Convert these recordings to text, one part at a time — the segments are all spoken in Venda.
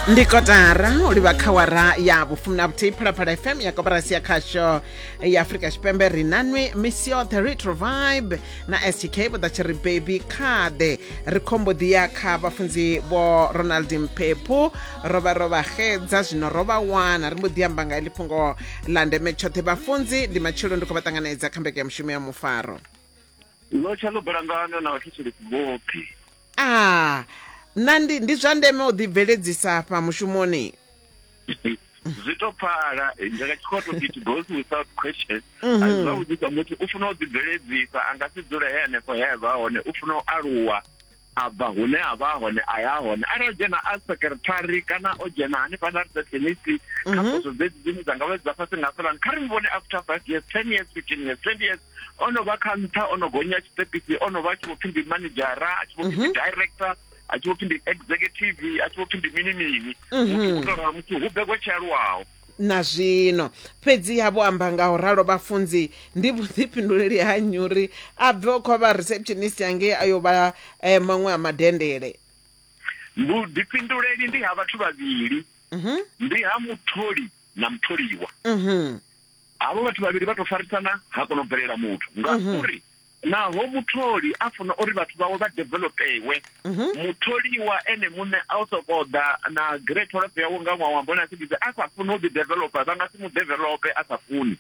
ndi kotara u livha kha wara ya vhufumi na vhuthihi phalaphala fm ya koporasi ya khasho ya afurika tshipembe ri nanwi misi yoṱhe retro vibe na stk vho ḓa tshi ri baby khade ri khombo ḓi ya kha vhafunzi vho ronald mphephu ro vha ro vha xedza zwino ro vha wana ri mbo ḓi amba nga iḽi fhungo ḽa ndeme tshoṱhe vhafunzi ndi matshelo ndi khou vha ṱanganedza kha mbekanya mushumo ya mufaro lotsha ḽo balangana na vhathetshelesi vhoṱhe Ah, na ndi, ndi zwa ndeme u ḓibveledzisa afha mushumoni. zwi tou pfala nga tshikhoto it goes without question a mhm. zwi vha vhudzisa muthu u funa u ḓibveledzisa a nga si dzule he hanefho he a vha hone u funa u aluwa a bva hune a vha hone a ya hone arali o dzhena a secretary kana o dzhena hanefha na receptionisi kha mhm. poso dzedzi dzine dza nga vha dza fhasi nga fhelani kha ri mu vhone after five years ten years fifteen years twenty years o no vha kha nṱha o no gonya tshiṱepisi o no vha a tshi vho pfhi ndi manedzhara a tshi vho pfhi ndi mhm. director a tshi vho pfhi ndi executive a tshi vho pfhi ndi mini mini mhm. muthu u tou muthu hu begwa tshi aluwaho na zwino fhedziha vho amba nga u ralo vhafunzi ndi vhuḓifhinduleli ha nyuri a bve o khovha receptionist yangei a yo vha eh, maṅwe a madendele vhuḓifhinduleli ndi ha vhathu vhavhili mhm. ndi ha mutholi na mutholiwa Havho vhathu vhavhili vha tou farisana ha kona u bvelela muthu ngauri naho mutholi a funa uri vhathu vhawe vha developewe, mutholiwa ene muṋe a u sokou ḓa na grey tholofe yawe nga ṅwaha wa mbona a tshi ḓi a sa funi u ḓi developer vha nga si mu develope a sa funi.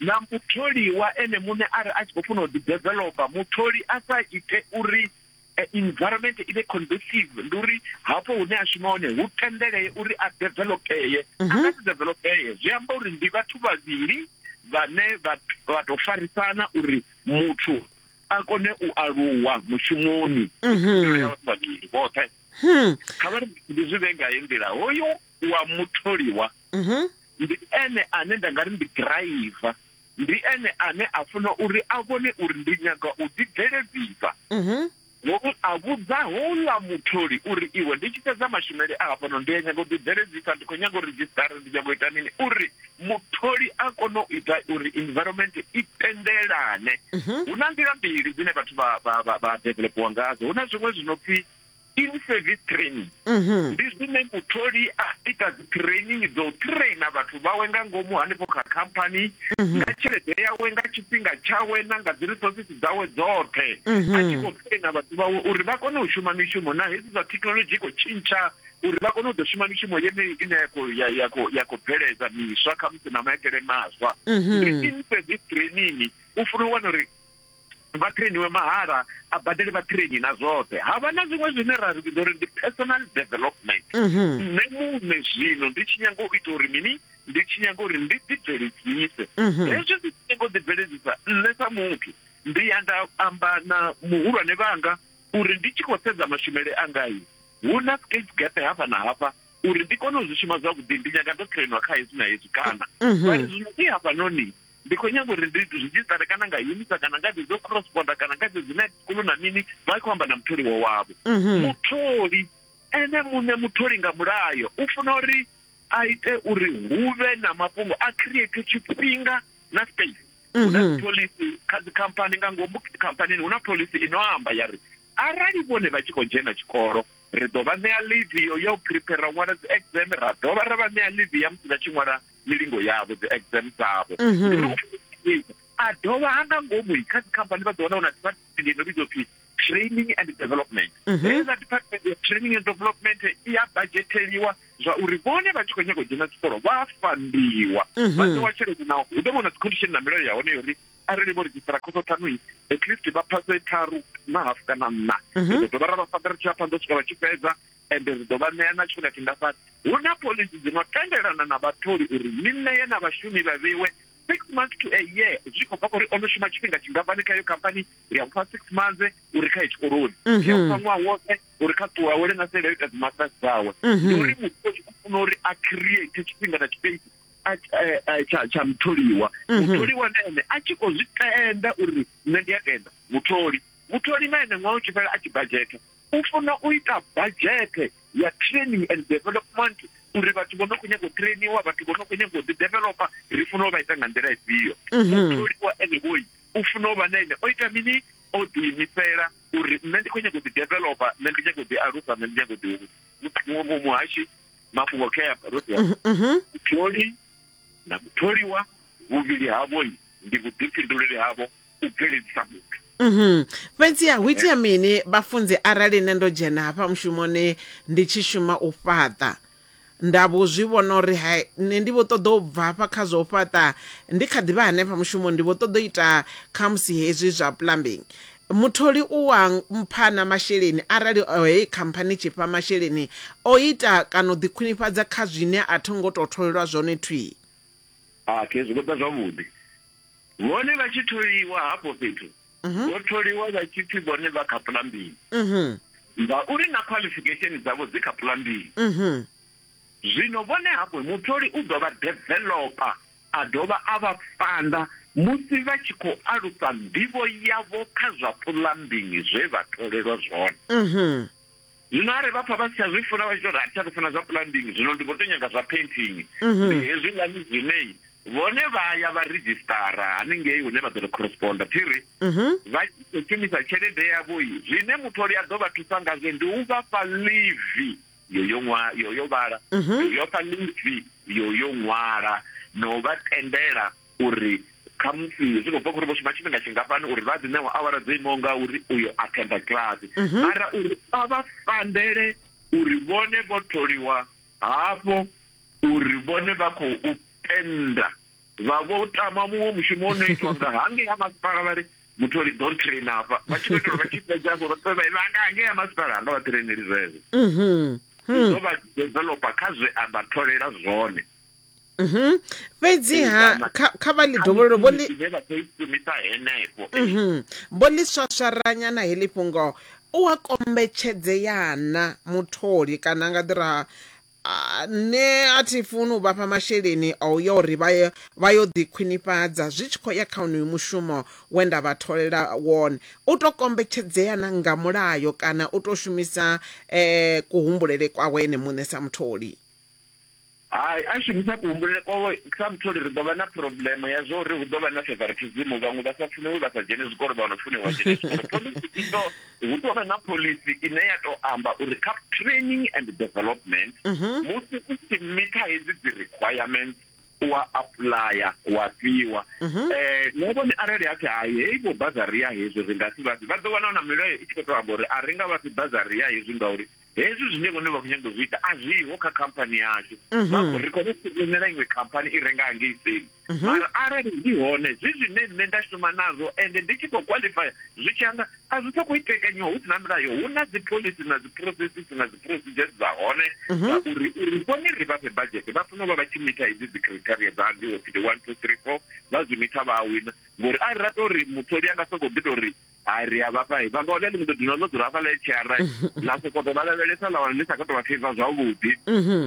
Na mutholiwa ene muṋe a re a tshi khou funa u ḓi developer mutholi a sa ite uri eh, environment i vhe conducive ndi uri hafho hune a shuma hone hu tendelee uri a developeye a mhm. nga si developeye zwi amba uri ndi vhathu vhavhili vhane vha tou farisana uri muthu a kone u aluwa mushumoni mhm. vhavhili vhoṱhe hmm. kha vha ndi zwi vhe nga nḓila hoyo wa mutholiwa mhm. ndi ene ane nda nga ri ndi driver Ndi ene ane a funa uri a vhone uri ndi nyaga u ḓibveledzisa. Ngomu a vhudza houḽa mutholi uri, Iwe, ndi tshi fhedza mashumele a hafhano ndi a nyaga u ḓibveledzisa, ndi khou nyaga u redzhisṱara, ndi nyaga u ita mini? Uri mutholi a kone u ita uri environment i tendelane, hu na nḓila mbili dzine vhathu vha, vha, vha, vha developiwa ngadzo. Hu na zwiṅwe zwi no pfi in service training mhm. ndi zwine mutholi a ita dzi training dzo traina vhathu vhawe nga ngomu hanefho kha khamphani mhm. nga tshelede yawe nga tshifhinga tshawe na nga dzi resources dzawe dzoṱhe mhm. a tshi khou traina vhathu vhawe uri vha kone u shuma mishumo na hedzi zwa thekhinolodzhi i khou tshintsha uri vha kone u ḓo shuma mishumo yeneyi ine ya khou bveledza miswa khamusi na maitele maswa ndi in service training u funa u wana uri vha trainiwe mahala a badele vha traini na zwoṱhe havha na zwiṅwe zwine ra ri vhidza uri ndi personal development mhm. nṋe muṋe zwino ndi tshi nyanga u ita uri mini ndi tshi nyanga uri ndi ḓibveledzise mhm. hezwi ndi tshi nyanga u ḓibveledzisa nṋe sa muthu ndi ya nda amba na muhulwane vhanga uri ndi tshi khou sedza mashumele angai hu na skate gap hafha na hafha uri ndi kone u zwi shuma zwavhuḓi ndi nyaga ndo trainwa kha hezwi na hezwi kana mhm. zwino i hafhanoni Ndi khou nyaga uri ndi ridzhisṱare kana nga UNISA kana nga dzedzo cross border kana nga dzedzi night school na mini vha khou amba na mutholiwa wavho. Mhm. Mutholi ene muṋe mutholi nga mulayo u funa uri a ite uri hu vhe na mafhungo a create tshifhinga na space. Hu na Mhm. phoḽisi kha dzikhamphani nga ngomu khamphanini hu na phoḽisi ino amba ya ri arali vhone vha tshi khou dzhena tshikolo ri ḓo vha ṋea leave yo ya u prepare ṅwala dzi exam ra dovha ra vha ṋea leave ya musi vha tshi ṅwala milingo yavho dzi exam dzavho mhm. ndi uri a dovha ha nga ngomu kha dzikhamphani vha ḓo wana una department ino vhidzwa phi training and development mhm. heza department ya training and development i ya budgeteliwa zwa uri vhone vha tshi khou nyanga u dzhena tshikolo vha fandiwa mhm. vha ṋewa tshelede naho hu ḓo vha na dzicondition na milayo ya hone yo uri arali vho redzhisitara khoso ṱhanu i at least vha phase tharu na hafu kana nṋa ri ḓo dovha ra vha fandara tshi vha phanḓa u swika vha tshi fhedza ende ri ḓo vha ṋea na tshifhinga tshingafhani. Hu na phoḽisi dzi no tendelana na vhatholi uri ni ṋee na vhashumi vha vheiwe six months to a year zwi khou bva kha uri o no shuma tshifhinga tshingafhani kha iyo khamphani ri a mufha six months uri kha ye tshikoloni mhm. ri a mufha ṅwaha woṱhe uri kha ṱuwa awele na sele ita dzimasters dzawe mhm. ndi uri muthu o tshi khou funa uri a create tshifhinga na tshipesi tsha tsha mutholiwa mhm. mutholiwa na ene a tshi khou zwi tenda uri nṋe ndi a tenda mutholi mutholi na ene ṅwaha u tshi fhela a tshi badzhetha u funa u ita badzhete ya training and development uri vhathu vho no khou nyaga u trainiwa vhathu vho no khou nyaga u ḓi developa ri funa u vha ita nga nḓila ifhio mhm. mutholiwa ene vhoi u funa u vha na ene o ita mini o ḓiimisela uri nṋe ndi khou nyaga u ḓi developa nṋe ndi nyaga u ḓi alusa nṋe ndi nyaga u ḓi muhashi mafhungo kheyapa ro ḓi mhm, mhm. mutholi na mutholiwa vhuvhili havhoi ndi vhuḓifhinduleli havho u bveledzisa muthu Mhm. fhedziha hu itea mini vhafunzi arali nṋe ndo dzhena hafha mushumoni ndi tshi shuma u fhaṱa nda vho zwi vhona uri ha nṋe ndi vho ṱoḓa u bva hafha kha zwa u fhaṱa ndi kha ḓivha hanefha mushumoni ndi vho ṱoḓa u ita khamusi hezwi zwa plumbing mutholi u wa mpha na masheleni arali o, heyi khamphani tshi fha masheleni o ita kana u ḓikhwinifhadza kha zwine a tho ngo tou tholelwa zwone thwii a khezwi ndo ḓa zwavhuḓi Vhone vha tshi tholiwa hafho fhethu, mhm. vho tholiwa vha tshi pfi vhone vha kha pulambili. Mhm. Ngauri na qualification dzavho dzi kha pulambili. Mhm. Zwino vhone hafho mutholi u ḓo vha developer a dovha a vha fanda musi vha tshi khou alusa nḓivho yavho kha zwa pulambingi zwe vha tholelwa zwone. Mhm. Zwino arali vha pfa vha si tsha zwi funa vha tshi tou ri a thi tsha tou funa zwa plumbing zwino ndi vho tou nyaga zwa painting ndi hezwiḽani zwine vhone vha ya vha ridzhisitara haningei hune vha ḓo ri corresponder thi ri vha tshi khou shumisa tshelede yavho i zwine mutholi a ḓo vha thusa ngazwo ndi u vha fha livi yo yo ṅwa yo yo vhala yo fha livi yo yo ṅwala na u vha tendela uri khamusi zwi khou bva khori vho shuma tshifhinga tshingafhani uri vha ḓi ṋewa awara dzo imaho nga uri uyo athenda kilasi mhm. mara uri a vha fandele uri vhone vho tholiwa hafho uri vhone vha khou tenda vha vho tama muṅwe mushumo o no itwa nga hangei ha masipala vha ri mutholi don train afha vha tshi khou itela vha tshi fhedza vho vha vha nga hangei ha masipala hanga vha traineli zwezwo mhm. hmm. zwo vha developer kha zwe a vha tholela zwone Mhm. fhedziha kha kha vha ḽi dovhololo vho ḽi vhe vha khou i shumisa henefho Mhm. vho ḽi swaswaranya na heḽi fhungo u a kombetshedzeana mutholi kana a nga ḓi ra "Ah, nṋe a thi funi u vhafha masheleni a u ya uri vha ye- vha yo ḓi khwinifhadza zwi tshi khou ya kha unoyu mushumo we nda vha tholela wone u tou kombetshedzeana nga mulayo kana u tou shumisa um kuhumbulele kwawe ene muṋe sa mutholi Hai, a shumisa kuhumbulele kwawe sa mutholi ri ḓo vha na phurobulemo ya zwa uri hu ḓo vha na fevharithizimu, vhaṅwe vha sa funiwi vha sa dzheni zwikolo vha no funiwa vha dzhene zwikolo. Phoḽisi i ḓo, hu ḓo vha na phoḽisi ine ya tou amba uri kha training and development musi u tshi mitha hedzi dzi requirements u a apuḽaya wa fhiwa. Na vhone arali ha pfi hai hei vho bazari ya hezwi ri nga si vha fhe, vha ḓo wana na milayo i tshi khou tou amba uri a ri nga vha fhi bazari ya hezwi ngauri hezwi zwine vhone vha khou nyanga u zwi ita a zwiho kha khamphani yashu vhakho ri khou founela iṅwe khamphani i renga hangei tsini mara arali zwi hone zwi zwine nṋe nda shuma nazwo ende ndi tshi khou qualifya zwi tshi anda a zwi sokou itekanyiwa hu si na milayo hu na dzi pholisi na dzi processes na dzi procedures dza hone dza uri uri vhone ri vha fhe badzhete vha funa u vha vha tshi mitha hedzi dzi criteria dza ndi opidi one two three four vha zwi mitha vha a wina ngori a ri ra tou ri mutholi a nga sokou ḓi tou ri a ri a vhafha vha nga hone ni mbo ḓi dzula no dzula hafhaḽa tshiara na sokou tou vha lavhelesa ḽa wana ni sa khou tou vha feiva zwavhuḓi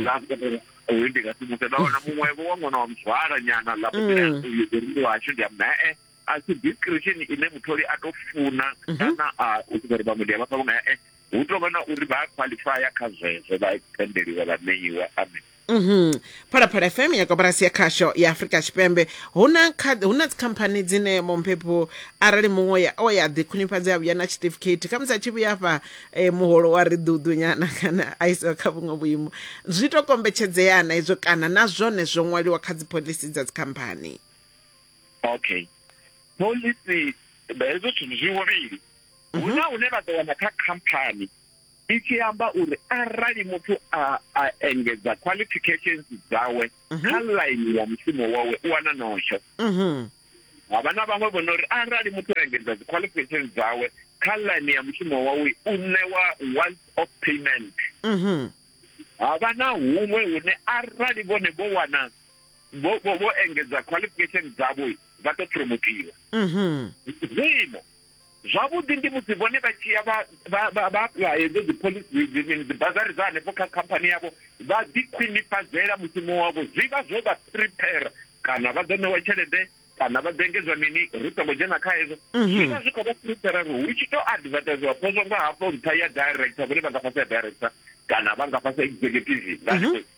na sokou uyu ndi nga si muse nda wana muṅwevho wa ṅwana wa muzwala nyana ḽa mutila uyu ḓo ndi washu ndi amba e a si discretion ine mutholi a tou funa kana a u sokou ri vhaṅwe ndi a vhafha vhunga e hu tou vha na uri vha a qualifya kha zwezwo vha tendeliwa vha ṋeiwa amen Mhm. phalaphala fm ya koporasi ya khasho ya afurika tshipembe hu na kha- hu na dzikhamphani dzine momphepho arali muṅwe ya- o ya ḓikhwinifhadza ya vhuya na tshiṱifikhethi khamusi a tshi vhuya fha eh, muholo wa ri ḓuḓu nyana kana a isiwa kha vhuṅwe vhuimo zwi to kombetshedzea na izwo kana na zwone zwo ṅwaliwa kha dzipholisi dza dzikhamphani okay pholisi hezwo zwithu zwi huvhili hu na hune vha ḓo wana kha khamphani i tshi amba uri arali muthu a a engedza qualifications dzawe mhm. kha line ya mushumo wawe u wana nosho mhm. havha na vhaṅwe vho nori arali muthu a engedza dzi qualifications dzawe kha line ya mushumo wawe u ṋewa once of payment mhm. havha na huṅwe hune arali vhone vho wana vho vho engedza qualifications dzavho vha ḓo promotiwa zwino Zwavhuḓi ndi musi vhone vha tshi ya vha vha apuḽaya hedzo dziphoḽisi dzi mini dzibazari dza hanefho kha khamphani yavho vha ḓikhwinifhadzela mushumo wavho, zwi vha zwo vha prepare kana vha ḓo ṋewa tshelede kana vha ḓo engedzwa mini ri songo dzhena kha hezwo mhm. zwi vha zwi khou vha prepare ri hu tshi tou advertisewa phozwa nga hafho nṱha ya director vhone vha nga fhasi ya director kana vha nga fhasi ya executive nga mhm.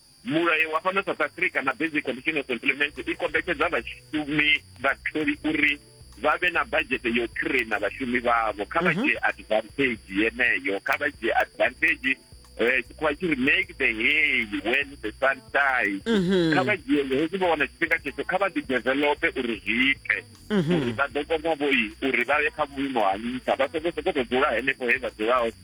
Mulayo wa fhano South Africa na Basic Condition of Employment i kombetshedza vhashumi vhatholi uri vha vhe na budget yo traina vhashumi vhavho kha vha mhm. dzhie advantage yeneyo kha vha dzhie advantage eh, tshikhuwa tshi ri make the hay when the sun shines mhm. kha vha dzhie hezwi vha wana tshifhinga tshetsho kha vha ḓi develope uri zwi ite mhm. uri vha ḓo kona vhoi uri vha ye kha vhuimo ha nṱha vha songo sokoto dzula henefho he vha dzulaho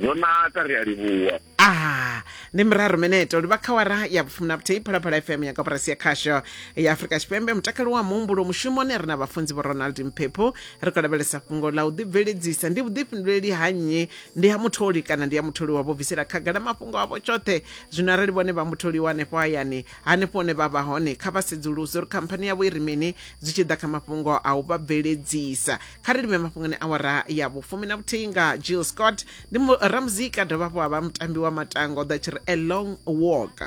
zwo naka ri a livhuwa Ah, ndi miraru minete uri vha kha wara ya vhufumi na vhuthihi phalaphala fm ya koporasi ya khasho ya afurika tshipembe mutakalo wa muhumbulo mushumoni ri na vhafunzi vho ronald mphephu ri khou lavhelesa fhungo ḽa u ḓibveledzisa ndi vhuḓifhinduleli ha nnyi ndi ha mutholi kana ndi ya mutholiwa vho bvisela khagala mafhungo avho tshoṱhe zwino arali vhone vha mutholiwa hanefho hayani hanefho hune vha vha hone kha vha sedzuluse uri khamphani yavho i ri mini zwi tshi ḓa kha mafhungo a u vha bveledzisa kha ri livhe mafhungoni awara ya vhufumi na vhuthihi nga jill scott ndi ramuzika dovha hafhu ha vha mutambi wa matangwa o ḓa tshi ri a long walk